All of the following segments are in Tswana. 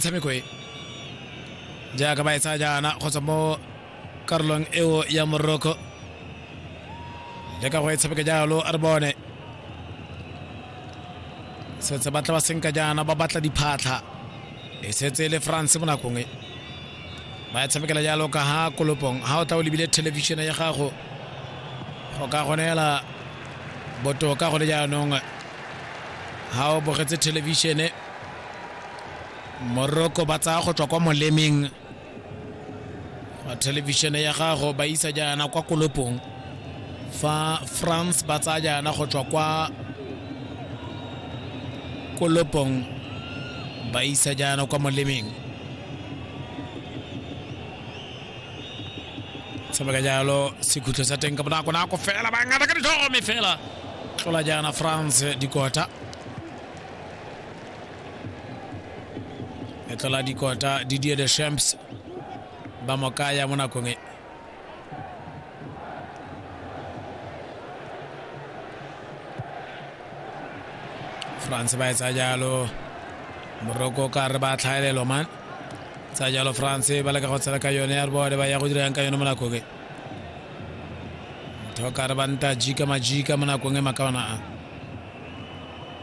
tshameko e jaaka ba e tsaya jaana kgotsa mo karolong eo ya morocco le ka go e tshameka jalo re bone setse batla ba senka jaana ba batla diphatlha e setse le france mo nakong e ba e tshamekela jalo ka ha kolopong ha o tla o lebile thelebišene ya gago go ka gonela botoka go le jaanong ha o bogetse thelebišene morocco ba tsaya go tswa kwa molemeng wa thelebišene ya gago ba isa jaana kwa kolopong fa france ba tsaya jaana go tswa kwa kolopong ba isa jaana kwa molemeng sebaka jalo sekhutlo sa teng ka bonako nako fela ba ngata ka ditlhogo me fela tlola jaana france dikota letlola dikota didier de champs ba mo kaya mo nakong e france ba e tsa jalo moroko ka re ba tlhaelelo man tsa jalo france ba leka go tshela ka yone ya re bone ba ya go dirang ka yone mo nakong e motho ka re ba nta jika majika mo nakong e makaona a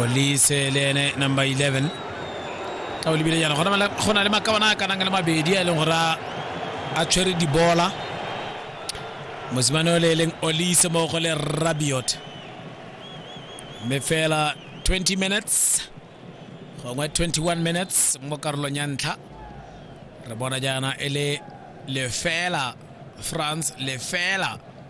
olise le ene number 11 ka o lebile jaana go na le makabana a kanang le mabedi a e leng gore a tshwere dibola mosimane o le e leng olise mo go le rabiot mme fela 20 minutes gongwe 21 minutes mo karolong ya ntlha re bona jaana e le lefela france lefela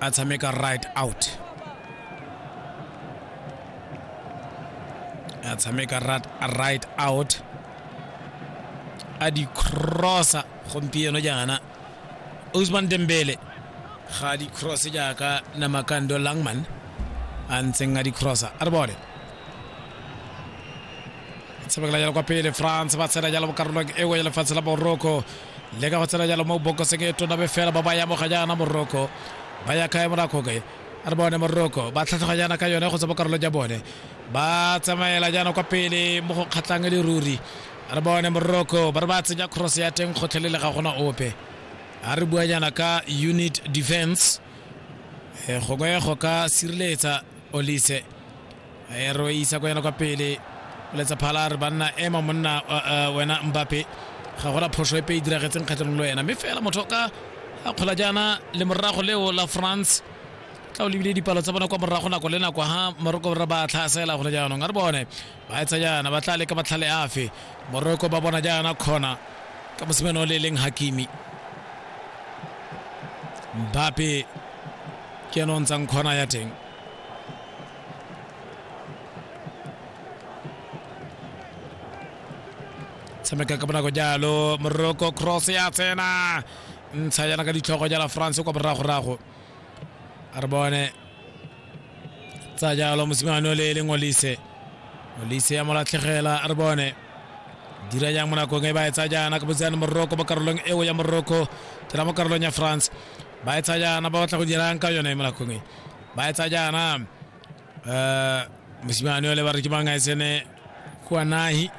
a tshameka right out a tshameka right out a di crossa gompieno jaana usman dembele ga di cross jaaka namakando langman a ntseng a di crossa a re bone tshamekela jalo kwa pele france ba tshela jalo mo karolong e nngwe ya lefatshe la morocco le ka go tsena jalo mo bokoseng e tona be fela ba ba yamoga jaana moroko ba ya kae morakoke a re bone moroko ba tlhatlhoga jaana ka yone go tswa mo karolo ja bone ba tsamaela jaana kwa pele mo go kgatlhang e le ruri a re bone moroko ba re ba tsenya cross ya teng kgotlhelele ga gona ope a re bua jaana ka unit defense e gongwe go ka sireletsa olise ero e isa kwa yana kwa pele letsa phala re banna ema monna wena mbape ga gona phoso epe e diragetseng kgatlhanong le wena mme fela motho ka a kgola jaana le morago leo la france tla o lebile dipalo tsa bona kwa morago nako le nako ha moroko ra ba tlhasela gone jaanong a re bone ba etsa jaana ba tla leka matlhale afe moroko ba bona jaana kgona ka mosimane o le leng hakimi mbape ke ene o ntshang kgona ya teng tshameka ka bonako jalo moroko cross ya tsena ntsha jana ka ditlhogo jala france kwa boragorago a re bone tsa jalo mosimane o le e leng olise olise ya molatlhegela a re bone dira jang mo nakong e ba e tsa jaana ka botseyane moroko mo karolong eo ya moroko tela mo karolong ya france ba e tsa jaana ba batla go dirang ka yone mo nakong e ba etsa jaana um mosimane ole ba re ke bangaesene kwa nahi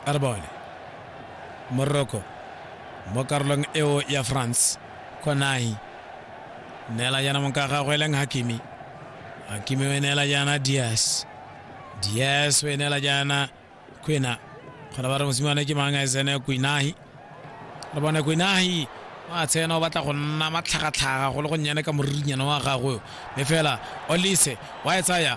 a re bone morocco mo karolong eo ya france kwa nahi neela jaana monka gagwe e leng hakimi hakimi o e neela jaana dias dias o e neela jaana kwina kgona ba re mosimane ke mang a tsene kwinahi re bone kwinahi wa tsena o batla go nna matlhagatlhaga go le go nnyane ka moririnyana wa gagwe mme fela olise wa e tsaya